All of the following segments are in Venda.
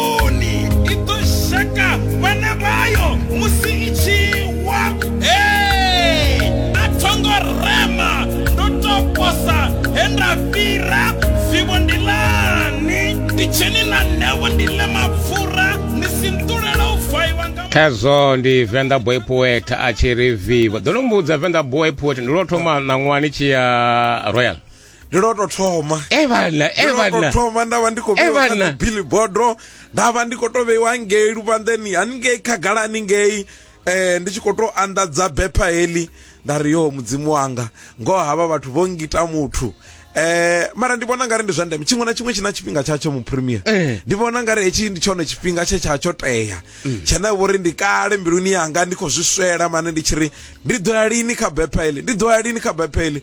Oni i ḓo sheka vhana vhayo musi i tshi wa. Ee, a tho ngo rema, ndo tou posa he nda fhira. Vivho ndi ḽani? Nditsheni na ṋewo ndi ḽe mapfura, ni si nṱulele u vaiwa nga. Khezwo ndi Venḓa Boy Poet a tshi ri vivo. Ḓo no mbudza Venḓa Boy Poet ndi lwo thoma ṋaṅwani tshi ya Royal. ndi lwo to thoma e vhana e Ndi lwo to vhana thoma nda vha ndi khou Eh, vheiwa kha vhana. dzi billboardo nda vha ndi khou to vheiwa ngei luvhanḓeni haningei khagala haningei eh ndi tshi khou to anḓadza bepha heḽi nda ri yo mudzimu wanga ngoho havha vhathu vho ngita muthu eh mara ndi vhona ngari ndi zwa ndeme tshiṅwe na tshiṅwe tshi na tshifhinga tshatsho mu premier Eh. ndi vhona ngari hetshi ndi tshone tshifhinga tshe tsha tsho tea tshene vhori ndi kale mbiluni yanga ndi khou zwi swela mane ndi tshi ri ndi ḓo ya lini kha bepha heḽi ndi ḓo ya lini kha bepha heḽi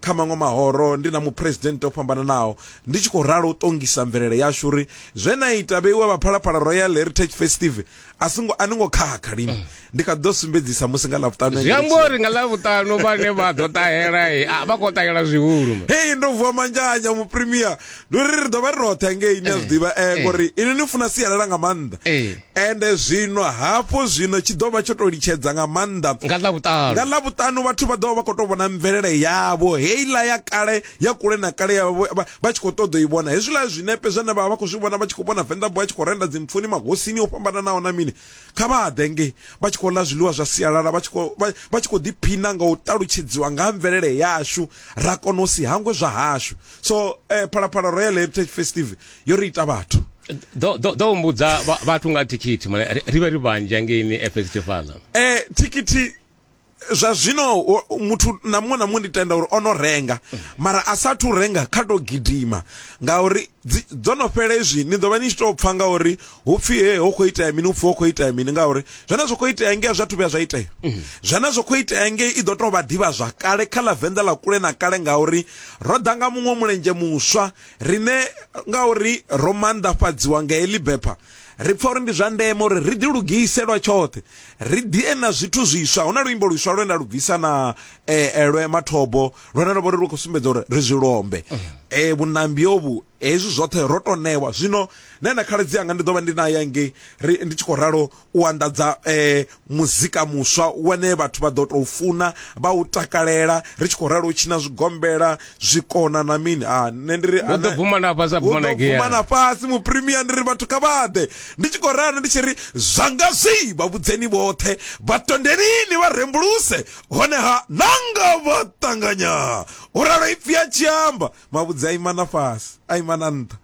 kha maṅwe mahoro ndi na muphuresidennde o fhambananaho ndi tshi khou ralo u ṱongisa mvelele yashu uri zwe na ita vheiwa vha phalaphala royal heritage festive a singo a ni ngo khakha lini mm. ndi kha ḓo sumbedzisa musi nga ḽavhuṱanu zwi amba uri nga ḽavhuṱanu vhane vha ḓo ṱahela a vha khou ṱahela zwihulu hei ndo vuwa manzhanya mupremier ndi uri ri ḓo vha ri roṱhe ngei ni a zwi eh, ḓivha eh, eh. ngori ini ni funa sialala nga maanḓa Ende zwino, hafhu zwino, tshi ḓo vha tsho tou litshedza nga maanḓa. Nga Ḽavhuṱanu. Nga Ḽavhuṱanu vhathu vha ḓo vha vha khou tou vhona mvelele yavho, heiḽa ya kale, ya kule na kale, ya vha, vha, vha tshi khou ṱoḓa u i vhona. Hezwiḽa zwinepe zwine vha vha vha khou zwi vhona, vha tshi khou vhona Venḓa Boy a tshi khou renda dzimpfuni, magosini o fhambananaho na mini, kha vha ḓe ngei, vha tshi khou ḽa zwiḽiwa zwa sialala, vha tshi khou, vha, vha tshi khou ḓiphina nga u ṱalutshedziwa nga ha mvelele yashu, ra kona u si hangwe zwa hashu. So, eh, Phalaphala Royal Heritage Festive, yo ri ita vhathu ḓo mbudza vhathu nga thikhithi mane ri vhe ri vhanzhi angeini efestifala um eh, thikhithi zwa zwino muthu na muṅwe na muṅwe ndi tenda uri o no renga mara a sathu renga kha to gidima ngauri dzo no fhela izwi ni ḓo vha ni tshi tou pfha ngauri hu pfhi he ho khou itea mini upfhi ho khou itea mini ngauri zwone zwo khou itea ngei a zwathu vhuya zwa itea mm. zwone zwo khou itea ngei i ḓo tou vha ḓivha zwa kale kha ḽa venḓa ḽa kule na kale ngauri ro ḓa nga muṅwe mulenzhe muswa riṋe ngauri ro manḓafhadziwa nga heḽi bepha ri pfa uri ndi zwa ndeme uri ri ḓilugise lwa tshoṱhe ri ḓie na zwithu zwiswa hu na luimbo lwiswa lwe nda lu bvisa na eh, eh, lwe mathobo lwene lwo vha uri lu khou sumbedza uri ri zwi lombe um eh, vhunambi ovhu hezwi zwoṱhe ro to ṋewa zwino nṋe na khaladzi anga ndi ḓo vha ndi naye ngei ndi tshi khou ralo u anḓadza eh, muzika muswa wane vhathu vha ḓo tou funa vha u takalela ri tshi khou ralo u tshina zwigombela zwikona na mini a ah, nṋe ndi ri ah, ḓo bvuma na fhasi bvuma na gea bvuma na fhasi mu premier ndi ri vhathu kha vhaḓe ndi tshi khou ralo ndi tshi ri zwanga zwi vha vhudzeni vhoṱhe vha tondelini vha rembuluse hone ha nanga vha ṱanganya u ralo ipfi a tshi amba mavhudzi a imana fhasi a imana nṱha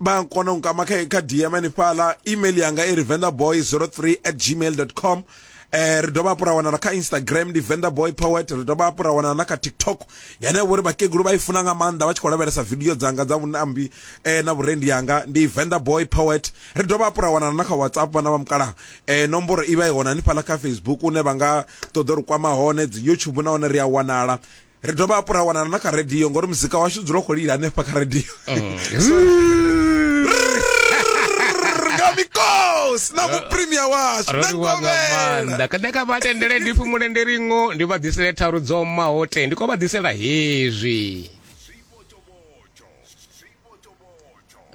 vha kona u nkama kha kha dm hanefhala email yanga i ri vendaboy 03 at gmail com eh ri dovha hafhu ra wanala kha instagram ndi venda boy poet ri dovha hafhu ra wanala na kha tiktok yane vhori vhakegulu vha i funa nga maanḓa vha tshi khou lavhelesa video dzanga dza vhunambi eh na vhurendi yanga ndi venda boy poet ri dovha hafhu ra wanala na kha whatsapp vhana vha mukalaha eh nomboro i vha i hone hanefhala kha facebook une vha nga ṱoḓa uri kwama hone dzi youtube na hone ri a wanala ri dovha hafhu ra wanana na kha radio ngori muzika washu dzula khou lila hanefha kha radio nga mikosi na mupremia washu na roliwa nga ngovhela maanḓa kada ka vha tendele ndi fumule ndi ringo ndi vha ḓisele tharu dzo maho te ndi khou vha ḓisela hezwi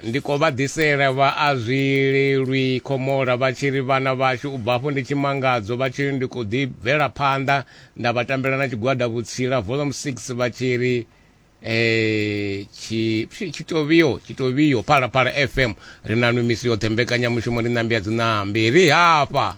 ndi khou vha ḓisela vha a zwi lelwi khomola vha tshi ri vhana vhashu u bva afho ndi tshimangadzo vha tshi ri ndi khou ḓi bvela phanḓa nda vha tambela na tshigwada vhutsila volume 6 vha tshi ri eh tshitovhiyo tshitovhiyo phala phala fm ri na nwi misi yoṱhe mbekanyamushumo ndi ṋambi ya dziṋambi ri hafha